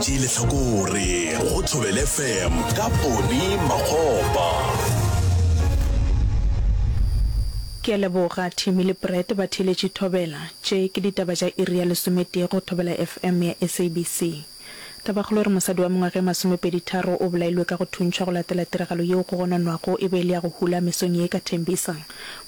Tee lehlakore go Thobele FM ka Poni Makgopa. Ke a leboga Timmy le Brett batheeletši Thobela. Tše ke ditaba tša iri ya lesometee go Thobela FM ya SABC. Tabakgolo e re mosadi wa mengwaga e masomepedi tharo o bolailwe ka go thuntšhwa go latela tiragalo yeo go gononwago e be e le ya go hula mesong ye ka Tembisa.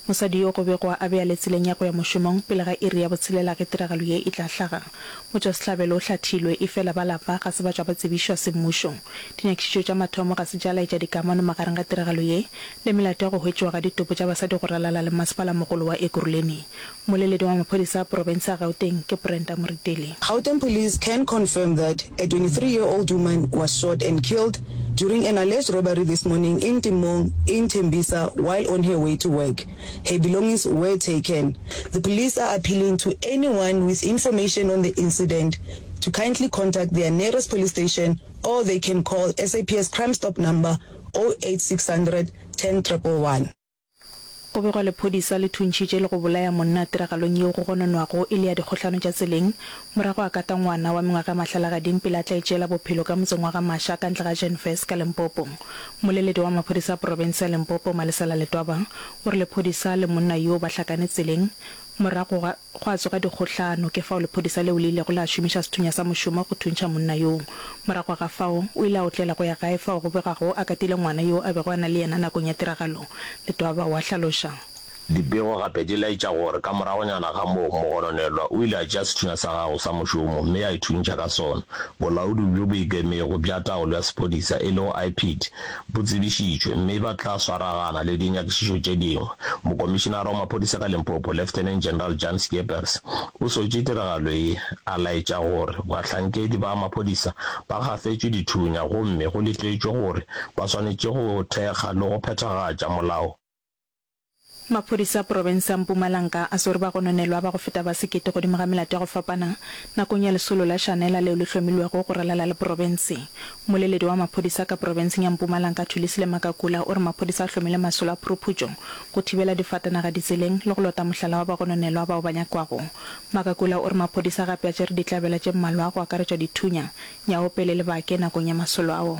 Mosadi yo go begwa a be a le tseleng ya go ya mošomong pele ga iri ya botshelela ge tiragalo ye e tla hlaga. Motšwasehlabelo o hlathilwe, efela ba lapa ga se ba tšwa ba tsebišwa semmušo. Dinyakišišo tša mathomo ga se tša laetša dikamano magareng ga tiragalo ye le melato ya go hwetšiwa ga ditopo tša basadi go ralala le Masepala-mogolo wa Ekurhuleni. Mmoleledi wa maphodisa a porofense ya Gauteng ke Brenda Moretele. Gauteng police can confirm that a twenty three year old woman was shot and killed during an alleged robbery this morning in Timong in Tembisa while on her way to work. Her belongings were taken. The police are appealing to anyone with information on the incident to kindly contact their nearest police station or they can call SAPS Crime Stop number 08 600 10 111. Go begwa lephodisa le thuntšhitše le go bolaya monna tiragalong yeo go gononwago e le ya dikgohlano tša tseleng Morago a kata ngwana wa mengwaga e mahlalagading pele a tla itšeela bophelo ka motseng wa Gamasha ka ntle ga Genfest ka Limpopo. Moleledi wa maphodisa a porofense ya Limpopo, Malesela Letwaba, o re lephodisa le monna yoo ba hlakane tseleng morago ga gwa tsoga dikgohlano ke fao lephodisa leo le ilego la šomiša sethunya sa mošomo go thuntšha monna yoo. Morago ga fao o ile a otlela go ya gae fao go begwago a katile ngwana yo a bego a na le yena nakong ya tiragalo, Letwaba o a hlaloša. Dipego gape di laetša gore ka moragonyana ga moo, mogononelwa o ile a tšea sethunya sa gago sa mošomo mme a ithuntšha ka sona. Bolaodi bjo bo Ikemego bja Taolo ya Sephodisa, e lego IPID, bo tsebišitšwe mme ba tla swaragana le dinyakišišo tše dingwe. Mokomišinara wa Maphodisa ka Limpopo, Lieutenant General Jan Scheepers, o swetše tiragalo ye, a laetša gore bahlankedi ba maphodisa ba gafetšwe dithunya gomme go letetšwe gore ba swanetše go thekga le go phethagatša molao. Maphodisa a profense ya Mpumalanka a swere bagononelwa ba go feta ba sekete godimo ga melato ya go fapana nakong ya lesolo la Shanela leo le hlomilwego go ralala le profense. Mmoleledi wa maphodisa ka profenseng ya Mpumalanka Thulisile Makakula o re maphodisa a hlomile masolo a phuruphutšo go thibela difatanaga ditseleng le go lota mohlala wa bagononelwa bao ba nyakwago. Makakula o re maphodisa gape a tšere ditlabela tše mmalwa go akaretšwa dithunya, nyaopele le bake nakong ya masolo ao.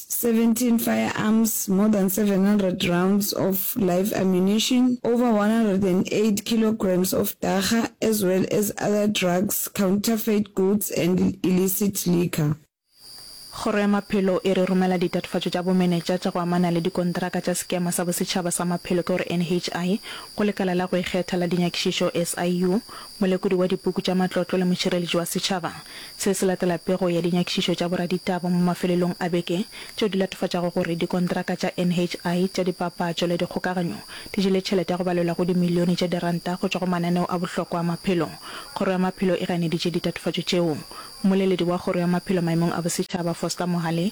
17 firearms, more than 700 rounds of live ammunition, over 108 kilograms of dagga as well as other drugs, counterfeit goods and illicit liquor. Kgoro ya Maphelo e re romela ditatofatšo tša bomenetša tša go amana le dikontraka tša Sekema sa Bosetšhaba sa Maphelo ke gore NHI go Lekala la go Ikgetha la Dinyakišišo, SIU, Molekodi wa Dipuku tša Matlotlo le Mošireletši wa Setšhaba. Se se latela pego ya dinyakišišo tša boraditaba mo mafelelong a beke tšeo di latofatšago gore dikontraka tša NHI tša dipapatšo le dikgokaganyo di jele tšhelete ya go balelwa go dimilione tša diranta go tšwa go mananeo a bohlokwa a maphelo. Kgoro ya Maphelo e ganeditše ditatofatšo tšeo. Mmoleledi wa Kgoro ya Maphelo maemong a Bosetšhaba, Foster Mohale,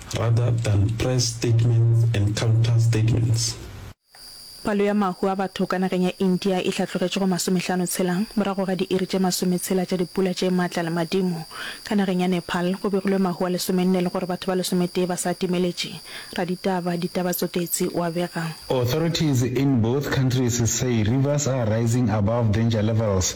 rather than press statements and counter statements. Palo ya mahu a batho ka nageng ya India e hlatlogetše go masomehlano tshela morago ga diiri tše masometshela tša dipula tše matla le madimo. Ka nageng ya Nepal go begilwe mahu a lesomenne le gore batho ba lesometee ba sa timeletše. Raditaba Ditaba Tsotetsi o a bega. Authorities in both countries say rivers are rising above danger levels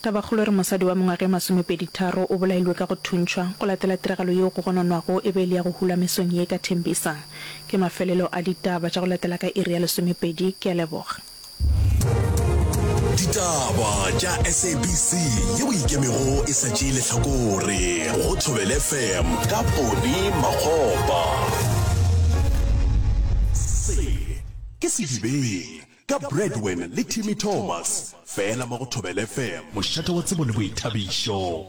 Tabakgolo e re mosadi wa mengwaga e masomepeditharo o bolailwe ka go thuntšhwa go latela tiragalo yeo go gononwago e be e le ya go hulwa mesong ye ka Tembisa. Ke mafelelo a ditaba tša go latela ka iri ya lesomepedi. Ke a leboga. Ditaba tša SABC ye o ikemego e sa tšee lehlakore go Thobel FM ka Pone Makgopa. Se ke sedibeng Ka Bradwin le Timmy Thomas fela mo go Thobela FM. Mošate wa tsebo le boithabišo.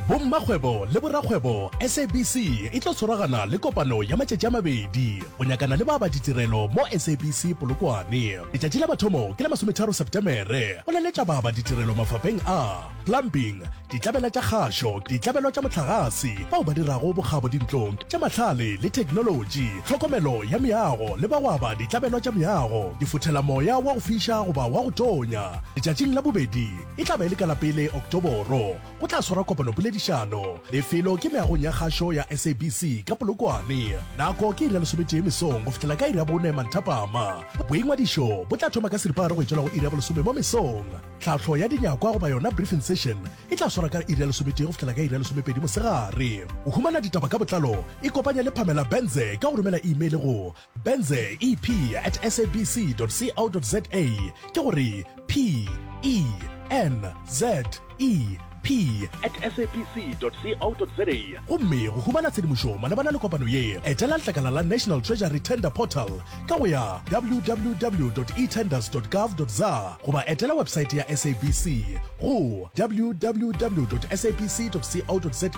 Bommakgwebo le borakgwebo SABC e tlo tshwaragana le kopano ya matšatši a mabedi go nyakana le ba ba ditirelo mo SABC Polokwane. Letšatši la mathomo ke la masometharo Sepetemere go laletša ba ba ditirelo mafapheng a. plumbing, ditlabela tša kgašo, ditlabelo tša mohlagase, bao ba dirago bokgabo dintlong tša mahlale le theknolotši, tlhokomelo ya meago le ba go aba ditlabelo tša meago, difothela moya wa go fiša goba wa go tonya. Letšatšing la bobedi, e tla ba e le ka la pele Oktoboro, go tla swarwa kopanopoledišano. Lefelo ke meagong ya kgašo ya SABC ka Polokwane. Nako ke iri ya lesometee mesong go fihlela ka iri ya bone manthapama. Boingwadišo bo tla thoma ka seripagare go e tšwela go iri ya bolesome mo mesong. Tlhahlo ya dinyakwa goba yona briefing session e tla swara ka iri ya lesometee go fihlela ka iri ya lesomepedi mosegare. Go humana ditaba ka botlalo, ikopanye le Pamela Benze ka go romela imeile go benze ep at sabc dot co dot za, ke go re p e n z e. P. At sabc.co.za. Gomme go humana tshedimošo malebana le kopano ye, etela letlakala la National Treasury Tender Portal ka go ya www.etenders.gov.za goba etela webesaete ya sabc go www.sabc.co.za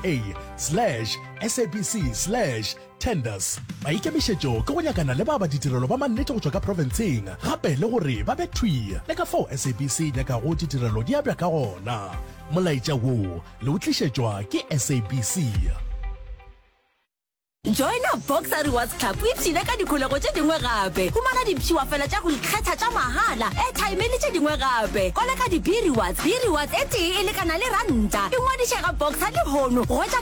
slash sabc slash Tenders, ba ikemišetšo ke go nyakana le ba ba ditirelo ba mannete go tšwa ka profenseng gape le gore ba be thwi le ka fao SABC e nyakago ditirelo di abja ka gona. Molaetša wo le o tlišetšwa ke SABC. Joina Boxer Rewards Club o ipshine ka dikholego tše dingwe gape. Humana dipshiwa fela tša go ikgetha tša mahala, airtime le tše dingwe gape. Koleka di-B-Rewards, B-Rewards e tee e lekana le ranta. Ingwadiše ga Boxer lehono go hwetša